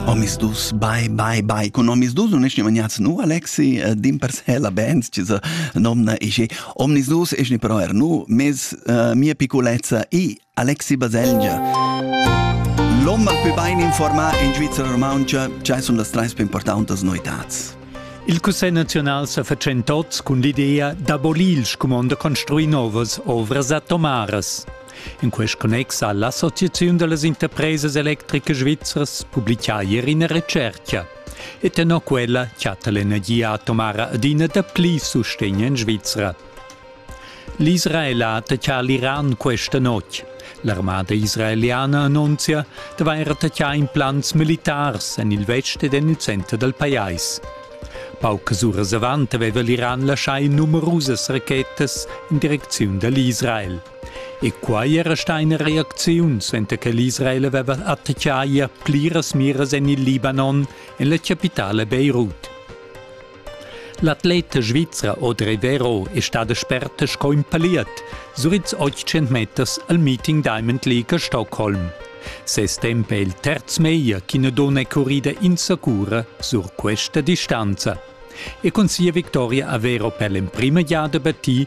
Omisdus, bai, bai, bai, cun omisdus un ești maniați, nu, Alexi, eh, din per se la Benz, ci se nomna ești, omisdus ești però er nu, mes uh, mia piccolezza i Alexi Baselgia. L'om al più bain informà in Svizzera Romancia, ce sunt las treis più importantes noitads. Il Cussegl nazional sa fatschentots cun l'idea d'abolir il scumond da construir novas ovras atomaras. In quest connex ha l'Associaziun da las interpresas electricas svizras publitgà ier ina retschertga. E tenor quella chatta l'energia atomara adina dapli sustegn en Svizra. L'Israel ha attaccà l'Iran questa notg. L'armada israeliana annunzia d'avair attaccà implants militars en il vest ed en il center dal pajais. Paucas uras avant aveva l'Iran laschà numerusas rachetas in direcziun da l'Israel. E quai era stà ina reacziun, senza che l'Israel aveva attachà ier pliras miras en il Libanon, en la chapitala Beirut. L'atleta svizra Audrey Vero è stada sperta sco in paliet, suits 800 meters al Meeting Diamond League a Stockholm. Ses temp è il terz meglio ch'ina donna è currida insacura sur questa distanza. E cun sia victoria a Vero per l'emprima giada battì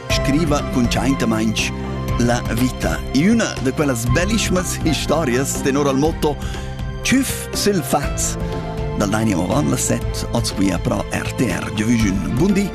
scriva cuntschaintamaing la vita. Üna da quellas bellischmas historias tenor al motto Tschüff sül faz dal Dani Oran, las set, oz qui a pro RTR. Giovüschun, bundi!